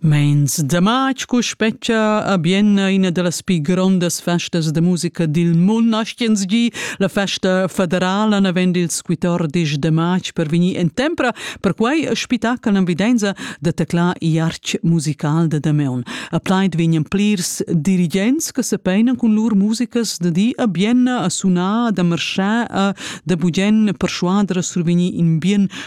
Meins da matg cu spetgia a Bienna ina dallas pi grondas festas da musica dil mund naschiens gi, la festa federala naven dils 14 de matg per vegnir en tempra, perquei spitacal envidenza da teclar iarc musical da Dameun. A plaid vegnan plirs dirigents che sepenan cun lur musicas da di a Bienna a sunar, da marschar a da bugen perschuader a survegnir in bien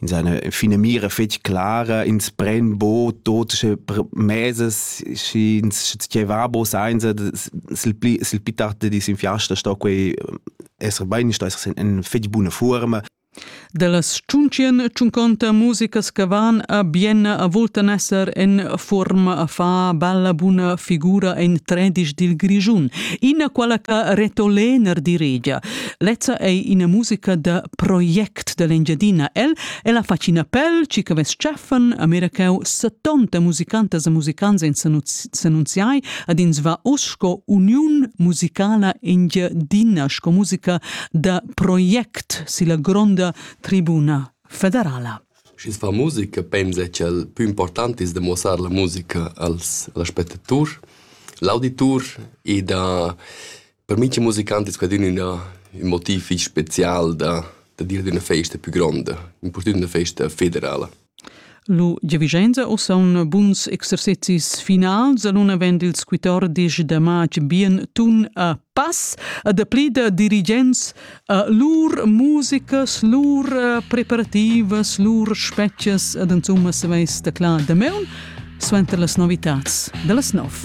in seine finamira fetg clara ins pren bo tot sche meses si ins che va bo seinza sil pli sil pli tard dis in fiasta sto quei esser bein sto esser in fetg buna forma Dallas tschuntschien tschunconta musicas che van a Bienna a voltan esser en forma a fa bella buna figura en tredisch dil Grischun, ina quala che retolener diregia. Lezza ei ina musica da project act dall'Engiadina el e la facina pel chi che vess tschaffen a Miracau 70 musicantas e musicants in s'annunziai ad ins va us sco uniun musicala engiadina sco musica da project silla gronda tribuna federala. Sch'ins fa musica, pensa che il più importante è demostrare la musica als, agli spettatori, l'auditor e da Per mi c'è musicant è scadin ina ün motiv fich spezial da da dir d'üna festa pü gronda, impurtant üna festa federala. Lu giavischenza u saun buns exercezis finals alun avend ils quatordisch da matg bien tun a pass a dapli da dirigents a lur musicas, lur eh, preparativas, lur spetgas ad insomma saveis taclar da meun suenter las novitats da las nov.